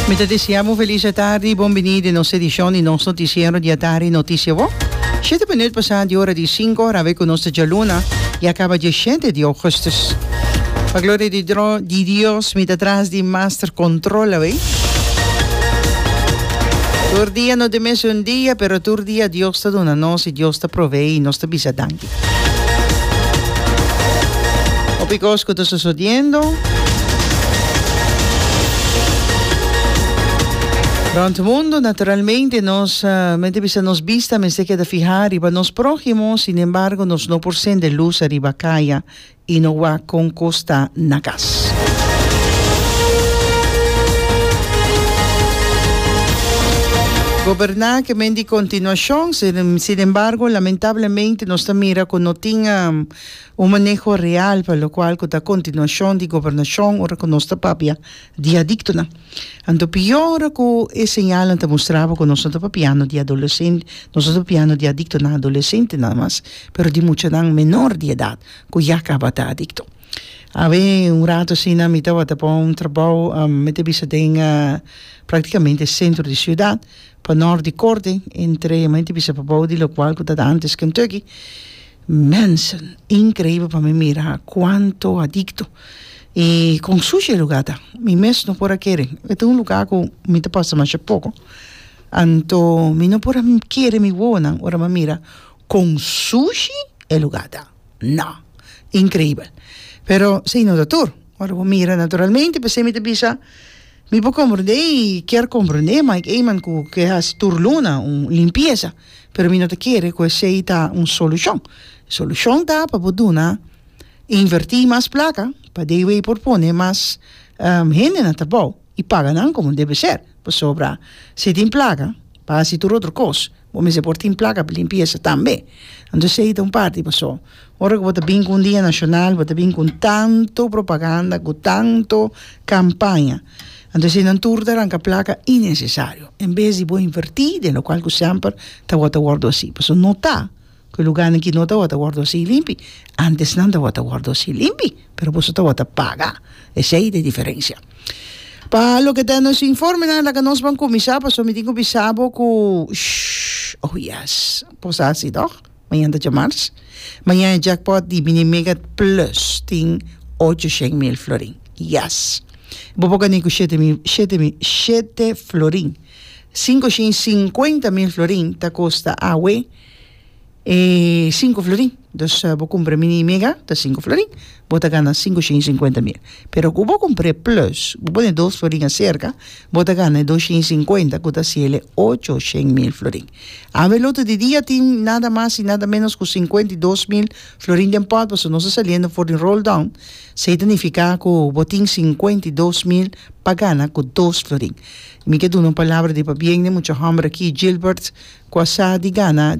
Mi ta desea bo felis atardi i bon bini den nos edicion di nos noticiero di atardi Noticia Bo. Shete minuut pasa di ora di sinku ora awe cu nos ta djaluna i a caba diashete di augustus. Pa gloria di dro di Dios mi ta tras di master control awe. Tur dia no ta mes un dia pero tur dia Dios ta duna nos i Dios ta provee i nos ta bisa danki. Hopi cos cu ta sosodiendo. Rond mundo, naturalmente nos mester bisa nos bista mester keda fihá riba nos próhimo, sinembargo nos no por sende lus ariba kaya y no wak con cos ta na cas. Goberna ke men di continuacion, sin embargo lamentablemente nos ta mira cu no tin un maneho real pa locual cu ta continuacion di gobernacion ora cu nos ta papia di adictonan. Anto pia ora cu e señalnan ta mustraba cu nos no ta papiando di adolescen, nos no ta papiando di adictonan, adolecentenan mas, pero di muchanan menor di edad. Ku ya kaba ta adikto. Awe un rato asina mi tabata pa un trabou, mi ta bisa den praktikamente sentro di siudat, pa nort di Kording, entre mi ta bisa pa bou di lokual ku tabata antes Kentucky. Mensen, inkreibel pa mi mira kuantu adikto i kon sushi e lugá ta. Mi mes no por a kere. E ta un lugá ku mi ta pasa masha poko, anto mi no por a kere mi wowonan ora mi a mira. con sushi e lugar ta. No. Increíbel. Pero sí no ta tur. Ora bo mira naturalmente p'esei mi ta bisa mi por comprende y kier comprende Mike Eman cu ke haci tur luna un limpieza pero mi no ta kere cu esei ta un solucion. Solucion ta pa bo duna inverti mas placa pa de wey por pone mas hende na trabao y paga nan como debe ser pasobra si tin placa pa haci tur otro cos. Bo mester por tin placa pa limpieza tambe. Anto esey ta un parti. Pasobra ora cu bo ta bin cu un dia nacional, bo ta bin cu tanto propaganda, cu tanto campaña. Anto esey nan tur ta aranca placa innecesario, en bes di bo inverti den locual cu semper tabata wordo hasi. Pasobra no ta. cu e lugarnan ki no tawata wordo así limpi antes nan tawata wordo así limpi pero boso tawata paga esey ta e diferencia pa loke ta nos informenan laga nos ban cuminsa pasobra mi tin cu bisa bo cu sh oh yes por sa si toch mañan ta djamars mañan e jackpot di mini mega plus tin ocho shen mil florin yes bo por gani cu shete mil shete mil shete florin cinco shin cincuenta mil florin ta costa awe E sinku florin. Dus bo kumpra mini i mega ta sinku florin, bo ta gana sinku shin i sinkuenta mil. Pero ku bo kumpra e plus, bo pone dos florin aserka, bo ta gana e dos shin i sinkuenta ku ta hasi el e ocho shen mil florin. Awe lote di dia tin nada mas i nada ménos ku sinkuenta i dos mil florin den pòt pasobra nos ta saliendo for di rolldown. Se ta nifiká ku bo tin sinkuenta i dos mil pa gana ku dos florin. Mi ke duna un palabra di pabien den mucha hòmber aki, Gilbert ku a sa di gana.